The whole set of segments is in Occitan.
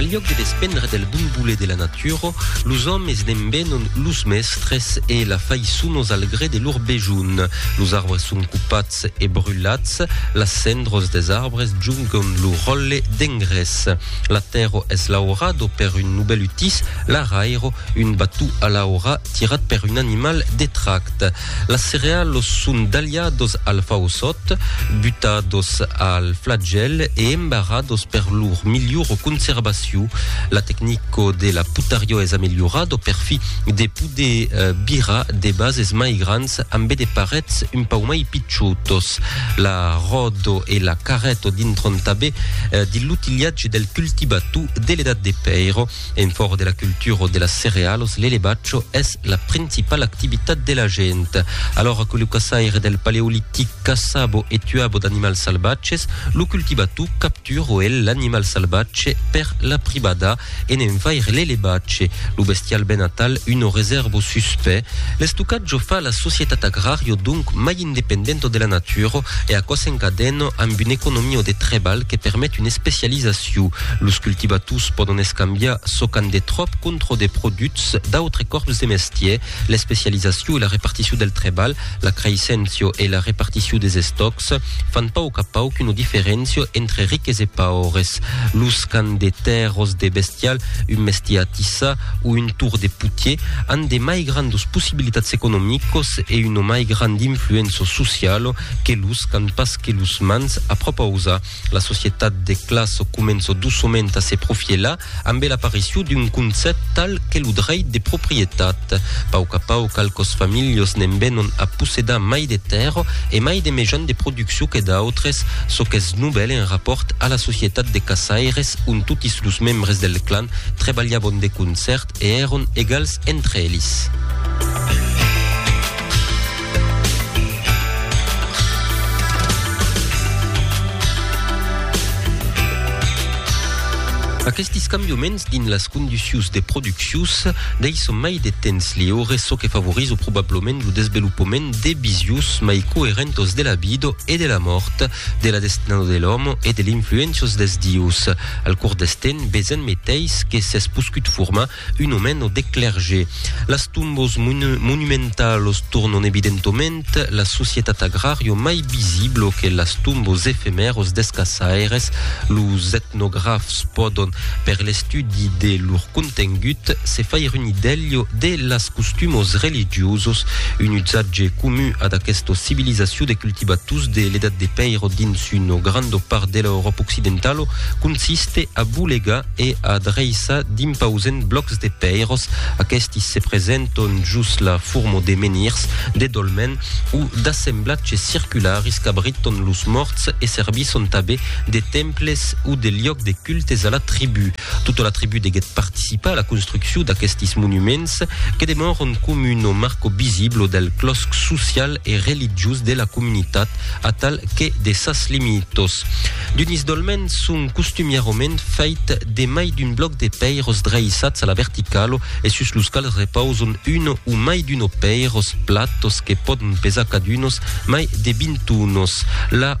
Al lhòc de despendre del bon voler de la natura, los òmes ne'n venon los mèstres e la faiçonos al gré de lor besonh. Los arbres son copats e brulats, las cendros des arbres jongon lo ròtle d'engrés. La tèrra es laurada per un novèl utís, l'arairo, un bató a l'aura tirat per un animal de tract. Las cerealos son dalhados al fausòt, butados al flagèl e embarados per lor milhor conservacion. La tecnico de la putariò es amelhorado per fi de poder birar de bases mai grans ambe de parets un pauc mai pichotos. La ròdo e la carreto dintron tabé de l'utilhatge del cultibatou de l'edat de pèiro. En fòra de la cultura o de las cerealos, l'elevatge es la principala activitat de la gent. Alora que lo caçaire del paleolitic caçava e tuava d'animals salvatges, lo cultivator captura el l'animal salvatge per la privada e ne'n fair l'elevatge, lo bestial ben atal, una resèrva o suspè. L'estocatge o fa la societat agrària, donc mai independento de la natura e aquò s'encadèn amb un economia de trebalh que permet una especializacion. Los cultivators pòdon escambiar çò qu'an de tròp contra de produchs d'autres còrps de mestièr. L'especializacion e la reparticion del trebalh, la creisséncia e la reparticion des estòcs fan pauc a pauc una diferéncia entre riques e paures. Los qu'an de tèrras de bestial, un mestier a tissar, o un tour de putier, an de mai grandos possibilitats economicos e una mai grand influença sociala que los qu'an pas que los mans a propausa. La societat de classa comença doçament a se profielar ambe l'aparicion d'un concèpt tal que lo dreit de proprietat. Pauc a pauc qualques familhas ne'n venon a possedar mai de tèrra e mai de mejans de produccion que d'autres, çò qu'es novèl en rapòrt a la societat de caçaires ont totis los membres del clan trebalhabon de concèrt e èron egals entre elis. Aquestis cambioments dins las conducius de produccius deisson mai de temps liure, çò que favorizo probablament lo desvelopament de visius mai coerentos de la vida e de la mòrt, de la destinada de l'òme e de l'influéncios des dieus. Al cors deth temps, Bezen meteis que s'es poscut formar un omeno de clerge. Las tombos monumentalos tornon evidentoment la societat agrario mai visiblo que las tombos efemèros des caçaires. Los etnografs pòdon, per l'estudi de lor contengut, se faire un idèlho de las costumos religiosos, un usatge comun ad aquesta civilizacion de cultivators de l'Edat de Pèiro dins una granda part de l'Euròpa Occidentala. Occidentalo consiste a bolegar e a dreissar d'impausents blòcs de pèiros, aquesti se presenton jos la forma de menhirs, de dolmen o d'assemblatges circularis qu'abriton los mòrts e servisson tabé de temples o de liòc de cultes a la tribú. Tota la tribú deguèt participar a la construccion d'aquestis monuments que demòron com un o marco visiblo del clòsc social e religiós de la comunitat atal que de sas limitos. D'un isdolment son costumièrament fait de mai d'un blòc de pèiros dreissats a la verticalo e sus los quals repauson uno o mai d'un o pèiros platos que pòdon pesar cadunos mai de 20 tonos. La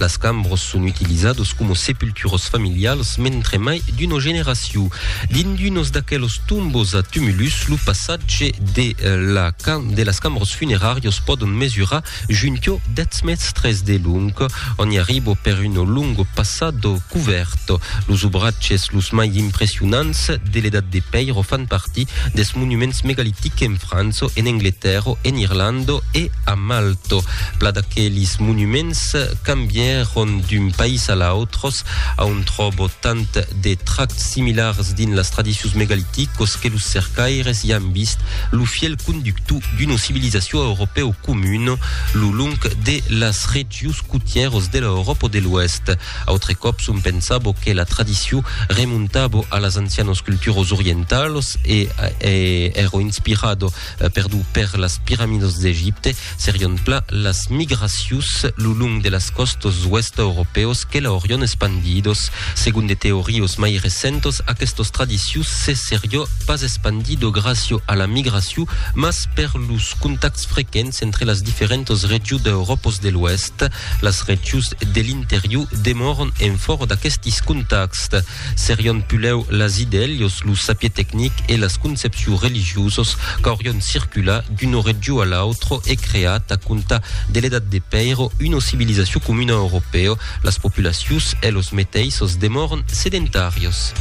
Las cambros son utilizados como sepulturos familials mentre mai d'una generacion. Dins d'unos d'aquelos tombos a tumulus, lo passatge de la de las cambros funeràrios pòdon mesurar junquò 10 mèstres de long, ont i arribo per uno longo passado covèrt. Los obratges los mai impressionants de l'Edat de Pèiro fan partir des monuments megalitics en França, en Angletèrra, en Irlanda e a Malto. Pla d'aquelis monuments cambièron d'un país a l'autres. A on tròbo tant de trachs similars dins las tradicions megaliticos que los cercaires i an vist lo fièl conductu d'una civilizacion europèu comuna lo long de las regions cotièros de l'Euròpa de l'Oèst. Autre còp son pensabo que la tradicion remontabo a las ancianos culturos orientalos e èro inspirado Perdut per las piramidos d'Egipte, serion plan las migracions lo long de las còstas d'oèsta europèos que l'aurion espandidos. Segon de teorios mai recentos, aquestos tradicions se serió pas espandido gràcio a la migracion, mas per los contacts frequents entre las diferentas regions d'Europos de l'Oèst. Las regions de l'interior demòron en fòra d'aquestis contacts. Serion pulèu las idèlios, lo sapier tecnic e las concepciu religiosos qu'aurion circular d'uno regiu a l'autro e creat a compta de l'Edat de Pèiro uno civilizaciu comuna europèo, las populacius e los meteissos demòron sedentarios.